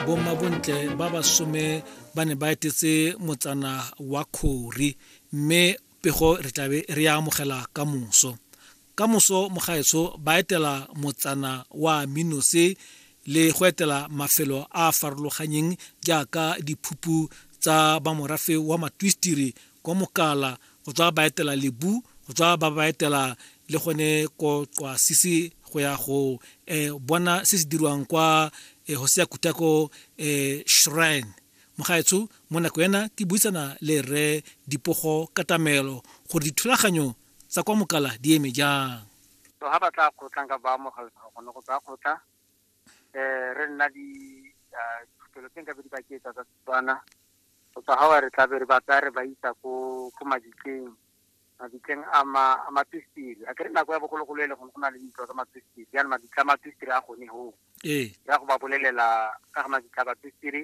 bommabontle ba basome ba ne ba etetse motsana wa khori mme pego re tlabe re ya amogela ka moso ka moso mogaetsho ba etela motsana wa minose le go etela mafelo a a farologanyeng jaaka diphuphu tsa bamorafe wa matwistiri kwa mokala go tswa ba etela lebu go tswa ba ba etela le gone ko qwa sisi go ya go eh, bona se se dirwang kwa eh, hosea kutako eh, shrine mogaetsho mo nako ena ke buisana le re dipogo katamelo gore dithulaganyo tsa kwa mokala di eme jang so ha ba tla kgotlang ka ba amogela gone go tsa kgotla um re nna di dilo tse nkabe di ba ketsa tsa setswana go tswa ga wa re tlabe re ba tsaya re ba isa ko ko mabitleng mabitleng a ma a matwistiri a kere nako ya bogologolo e le gone go na le dintlo tsa matwistiri jaanong mabitla a matwistiri a gone hoo ee ya go ba bolelela ka ga mabitla a batwistiri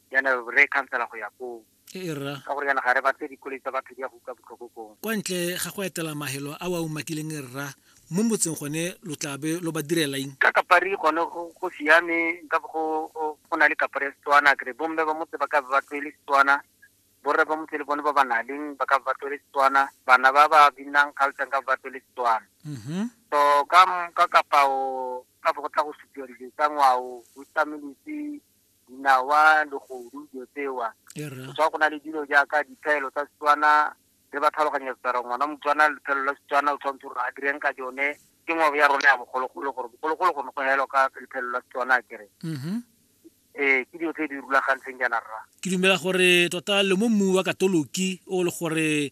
yana re khansela go ya koo e rra ka gore yana ga re batle dikoloi tsa batho di ya go uka botlhoko koo kwa ntle ga go etela mahelo a wa umakileng e rra mo motseng gone lo tlabe lo ba direla eng ka kapari gone go siame nka go na le kapari ya setswana kere bomme ba motse ba ka ba tlwele setswana borre ba motse le bone ba ba na leng ba ka ba tlwele setswana bana ba ba binang culture ka ba tlwele setswana mm-hmm. so ka ka kapao ka go tla go supiwa dilo tsa ngwao o tsameletse dinawa, legodu, dilo tsewa. Setswana go na le dilo jaaka diphaelo tsa Setswana re ba tlhaloganya setsara ngwana motswana lephelo la Setswana o tshwanetse gore a direng ka jone ke ngwabo ya rona ya bogologolo gore bogologolo go ne go helwa ka lephelo la Setswana kere mm-hmm. ee ke dilo tse di rulagantseng jaana rra ke dumela gore tota le mo mmu wa katoloki o le gore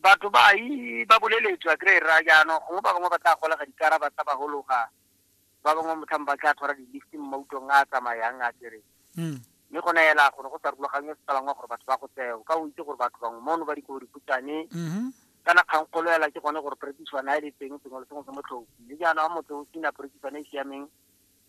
Batho ba I ba boleletswa kry ra jaanong gongwe ba bangwe ba tla golega dikara ba tsa ba hologa ba bangwe motlhang ba tla tshwara di-lift mo mautong a a tsamayang a kere hmm. mme go naela gone go sa rulagangwe se tsalangwa gore batho ba go tseo ka o itse gore batho bangwe mono ba dikobo dikhutshwane mm-hmm. kana kgang kgolo ela ke gone gore perekisiwana e le teng sengwe le sengwe se motlhoki mme jaana wa motho o sena perekisiwana e siameng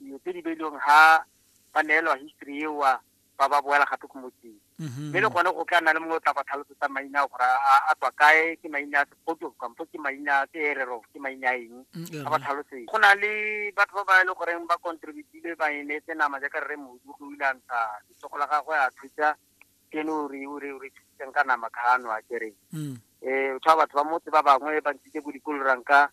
dilo tse di beilweng ha ba neelwa history eo ba ba boela gape ko motseng mhm. mme le gone go tla nna le mongwe o tla ba tlhalosetsa maina gore a tswa kae ke maina a sepoto kampo ke maina a seerero ke maina a eng mm, a ba tlhalosetse go na le batho ba ba e le goreng ba contributile ba e neetse nama jaaka rre modu go ile a ntsha letsogo la gagwe a thusa kene o re o re o re thusitseng ka nama kgano a kereng um mm. eh, o tshwa batho ba motse ba bangwe ba ntshitse bo dikoloranka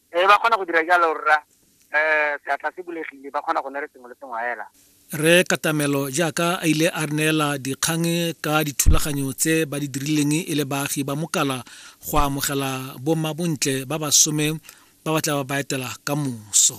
ee ba kgona go dira jalo rra um seatla se bulegile ba kgona go ne re sengwe le sengwe fela re katamelo jaaka a ile a neela dikgang ka dithulaganyo tse ba di dirileng e le baagi ba mokala go amogela bomma bontle ba basome ba ba tla ba ba etela ka moso